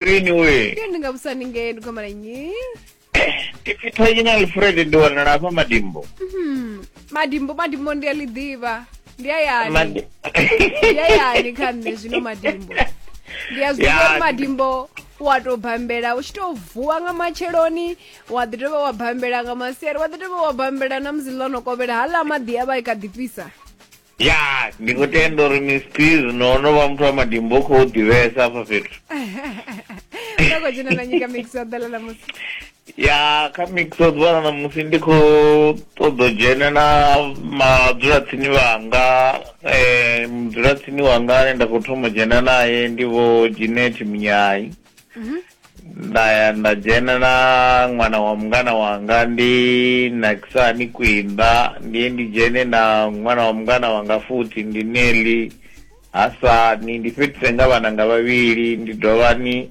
Green we. Ndi nga busani nge ndi gomala nyi. Ndi pfitha ina Alfred ndi wanala hafha madimbo. Hmm. Madimbo madimbo ndi ali ḓivha. Ndi ayani. Madi- Ndi ayani kha nṋe zwino madimbo. Ndi a zwi Ya, ḓivha ndi- madimbo wa to bambela u tshi to vuwa nga matsheloni wa ḓi dovha wa bambela nga masiari wa ḓi dovha wa bambela na musi ḽo no kovhela haḽa maḓi a vha i kha ḓi fhisa Ya, ndi khou tenda uri Miss Peas no no vha muthu wa madimbo u khou ḓivhesa afha fhethu. Nda khou dzhena na nyika mix ya ḓala na musi. Ya, kha mix o ḓuvha na musi ndi khou ṱoḓa u dzhena na madzulatsini vhanga eh mudzulatsini wanga ane nda khou thoma u dzhena nae ndi vho Jeanette Munyai. nda ya nda dzhena na ṅwana wa mungana wanga ndi nakisa ni kwinda ndiye ndi dzhene na ṅwana wa mungana wanga futhi ndi neli hasani ndi fhedzise nga vhananga vhavhili ndi dovha ni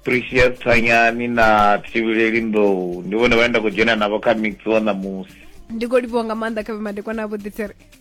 precious thanyani na thivhileli nḓou ndi vhone vhane nda khou dzhena navho kha mix wa ṋamusi ndi khou livhuwa nga maanḓa kha vhe madekwana a vhuḓi tsere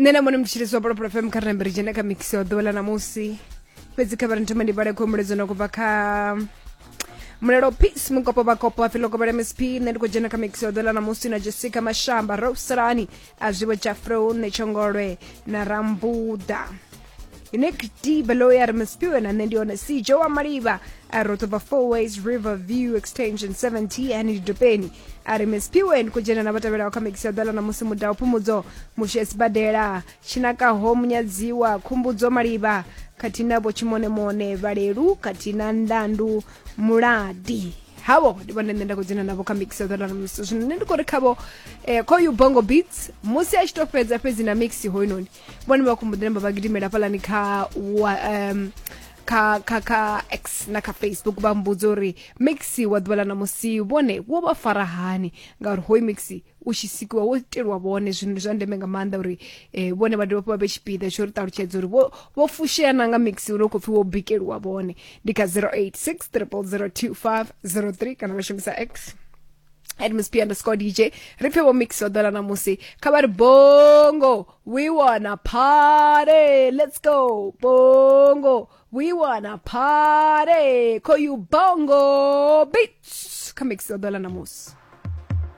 nṋe na mone mutshilisi wa polopolo fm kha rina dzhene kha mix wa ḓuvha ḽa ṋamusi fhedzi kha vha ri thoma ndi vhale khou muledzo na kubva kha mulelo peace mukopo vhakopo a filo kobela msp nṋe ndi khou dzhena kha mix wa ḓuvha ḽa ṋamusi na jessica mashamba roselani a zwivo jafro nṋe tshongolwe na rambuda inekiti baloyi ari masipiwe na nṋe ndi hone sijo wa malivha a ro tovha four ways river view extension 70 ani lidopeni a ri masipiwe ndi khou dzhena na vhatevhelaho kha mekisi ya ḓala na musi muda phumudzo mushe sibadela tshinakaho munyadziwa khumbudzo malivha khathihi na vho tshimonемone vhalelu khathihi na ndandu muladi havo ndi vhone nṋe nda khou dzhena navho kha mix ya ḓala na musi zwino nṋe ndi khou ri khavho eh, khoyu bongo beats musi a tshi to fhedza fhedzi na mix hoyunoni vhone vha khomboḓi namba vha gidimela hafhaḽani kha um, kha kha kha x na kha facebook vha mbudza uri maxi wa ḓuvha ḽa ṋamusi vhone wo vha fara hani ngauri hoyu maxi u tshi sikiwa wo itelwa vhone zwino ndi zwa ndeme nga maanḓa uri um vhone vha dovha fha vha vhe tshipiḓa tsho ri ṱalutshedza uri vho fushea na nga maxi uri u khou pfhi wo bikeliwa vhone ndi kha 086 0002503 kana vha shumisa x and miss p underscore dj ri pfe vho mix vha ḓola ṋamusi kha vha ri bongo we wanna party let's go bongo we wanna party call you bongo beats kha mix vha ḓola ṋamusi